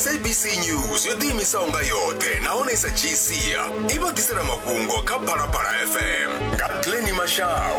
sabc news yo ḓiimisaho nga yoṱhe nahone sa gcia i vha ḓisela mafhungo kha phalaphala fm nga pleni mashau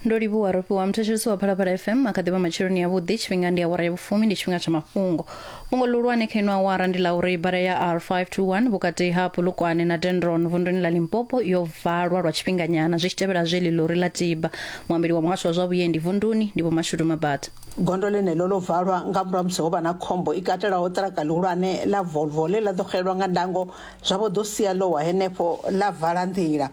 ndo livhuwa ro fhiwa muthetshelesi wa phalaphala fm a kha ḓivha matsheloni yavhuḓi tshifhinga ndi awara ya vhufumi ndi tshifhinga tsha mafhungo fhungo ḽihulwane kha ino awara ndi ḽa uri bada ya r521 vhukati ha pulukwane na dendron vunduni ḽa limpopo yo valwa lwa tshifhinganyana zwi tshi tevhela zwe ḽilori ḽa tiba muambeli wa muhasho wa zwa vhuendi vunduni ndi vho mashudu mabata gondo ḽeneḽo ḽo valwa nga murahu musi ho vha na khombo i katelaho ṱiraka ḽihulwane ḽa volvo ḽe ḽa ḓo xelelwa nga ndango zwa vho ḓo sia ḽo wa henefho ḽa vala nḓila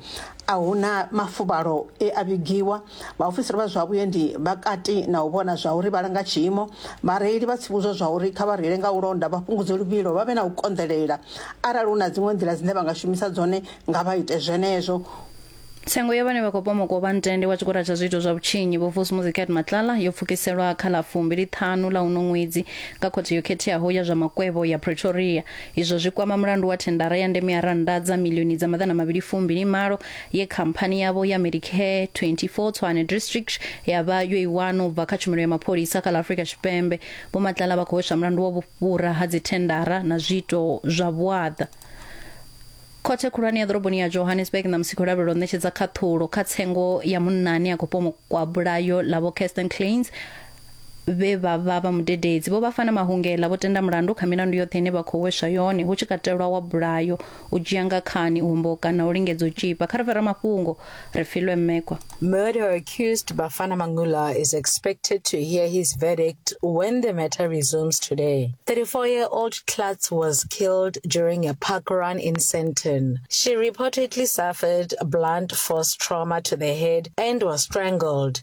a hu na mafuvhalo e a vhigiwa Vhaofisiri vha zwa vhuendi vha kati na u vhona zwa uri vha langa tshiimo. Vhareili vha tsivhudzwa zwa uri kha vha reile nga u londa, vha fhungudze luvhilo, vha vhe na u konḓelela. Arali hu na dziṅwe nḓila dzine vha nga shumisa dzone, nga vha ite zwenezwo. Tsengo ya vhane vha khou pomoka u vha ntende wa tshigwada tsha zwiito zwa vhutshinyi, Vho Vusumuzi Cat Matlala, yo pfukiselwa kha ḽa fumbili ṱhanu ḽa uno ṅwedzi nga Khothe yo Khetheaho ya zwa Makwevho ya Pretoria. Izwo zwi kwama mulandu wa thendara ya ndeme ya rannda dza miḽioni dza maḓana mavhili fumbili malo ye khamphani yavho ya medicare 24 tshwane district ya vha yo i wana u bva kha tshumelo ya mapholisa kha ḽa afrika tshipembe vho matlala vha khou hweswa mulandu wa vhufhura ha dzithendara na zwiito zwa vhuaḓa khothe khulwane ya ḓoroboni ya johannesburg na musiko lavhelelo ṋetshedza khaṱhulo kha tsengo ya munna ane a khou pomokwa bulayo ḽa vho kirsten clains vhe vha vha vha mudededzi vho vha fana mahungela vho tenda mulandu kha milandu yoṱhe ine vha khou weswa yone hu tshi katelwa wa bulayo u dzhia nga khani u homboka na u lingedza u tshipa kha ri fara mafhungo ri filwe mmekwa Murder accused Bafana Mangula is expected to hear his verdict when the matter resumes today. 34-year-old Klatz was killed during a park run in Sandton. She reportedly suffered blunt force trauma to the head and was strangled.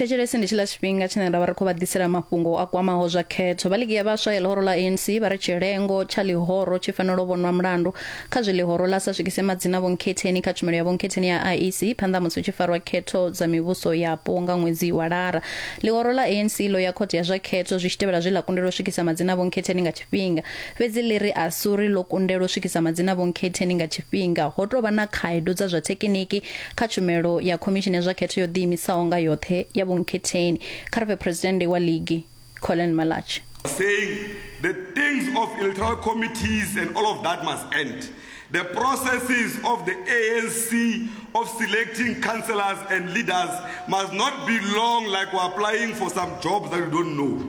thetshelesi ndi tshiḽa tshifhinga tshine ra vha ri khou vha ḓisela mafhungo a kwamaho zwa khetho vha ligi ya vhaswa ya ḽihoro ḽa anc vha ri tshilengo tsha ḽihoro tshi fanela u vhonwa mulandu kha zwi ḽihoro ḽa sa swikise madzina vhonkhetheni kha tshumelo ya vhonkhetheni ya iec phanḓa musi hu tshi farwa khetho dza mivhuso yapo nga ṅwedzi wa lara ḽihoro ḽa anc ḽo ya khothe ya zwa khetho zwi tshi tevhela zwe ḽa kundelwa u swikisa madzina vhonkhetheni nga tshifhinga fhedzi ḽi ri asuri ḽo kundelwa u swikisa madzina a vhonkhetheni nga tshifhinga ho tou vha na khaedu dza zwa thekiniki kha tshumelo ya khomishini ya zwa khetho yo ḓiimisaho nga yoṱhe ya vhonkhetheni kha ri pfe phuresidennde wa ligi colin malach saying the things of electoral committees and all of that must end the processes of the anc of selecting councillors and leaders must not be long like we're applying for some jobs that we don't know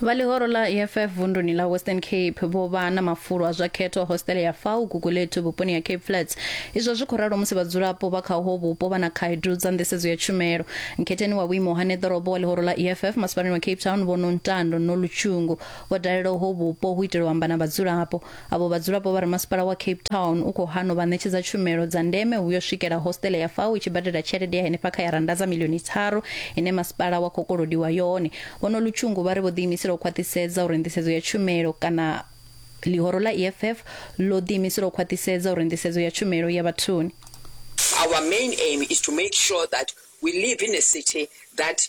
Vha ḽihoro ḽa EFF vunduni ḽa Western Cape vho vha na mafulo a zwa khetho hositele ya Fau Gugulethu vhuponi ha Cape Flats. Izwo zwi khou ralo musi vhadzulapo vha kha uho vhupo vha na khaedu dza nḓisedzo ya tshumelo. Nkhetheni wa vhuimo ha neḓorobo wa ḽihoro ḽa EFF masipalani wa Cape Town Vho Nontando Nolutshungu vho dalela uho vhupo hu itela u amba na vhadzulapo. avho vhadzulapo vha ri masipala wa Cape Town u khou hana u vha ṋetshedza tshumelo dza ndeme hu yo swikela hostele ya fao i tshi badela tshelede ya henefha kha ya rannda dza milioni tharu ine masipala wa khou kolodiwa yone. Vho Nolutshungu vha ri vho ḓiimisela u khwaṱhisedza uri nḓisedzo ya tshumelo kana ḽihoro ḽa EFF ḽo ḓiimisela u khwaṱhisedza uri nḓisedzo ya tshumelo ya vhathuni. Our main aim is to make sure that we live in a city that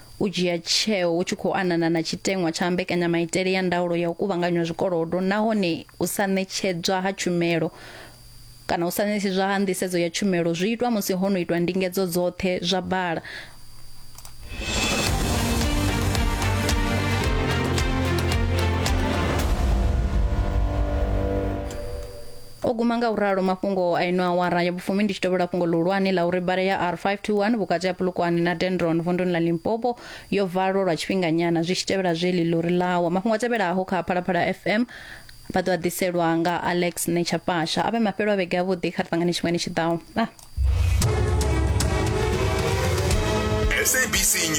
u dzhia tsheo hu tshi khou anana na tshiteṅwa tsha mbekanyamaitele ya ndaulo ya u kuvhanganywa zwikolodo nahone u sa ṋetshedzwa ha tshumelo kana u sa ṋetshedzwa ha nḓisedzo ya tshumelo zwi itwa musi ho no itwa ndingedzo dzoṱhe zwa bala O guma nga u ralo mafhungo a ino awara ya vhufumi ndi tshi tovhela fhungo ḽihulwane ḽa uri bada ya R521 vhukati ha Polokwane na Dendron vunḓuni ḽa Limpopo yo valwa lwa tshifhinganyana zwi tshi tevhela zwe ḽilori ḽa wa. Mafhungo a tevhelaho kha Phalaphala FM vha ḓo a ḓiselwa nga Alex Nechapasha. A vhe mafhelo a vhege avhuḓi kha ri ṱangane tshifhingani tshi ḓaho. Ah. SABC News.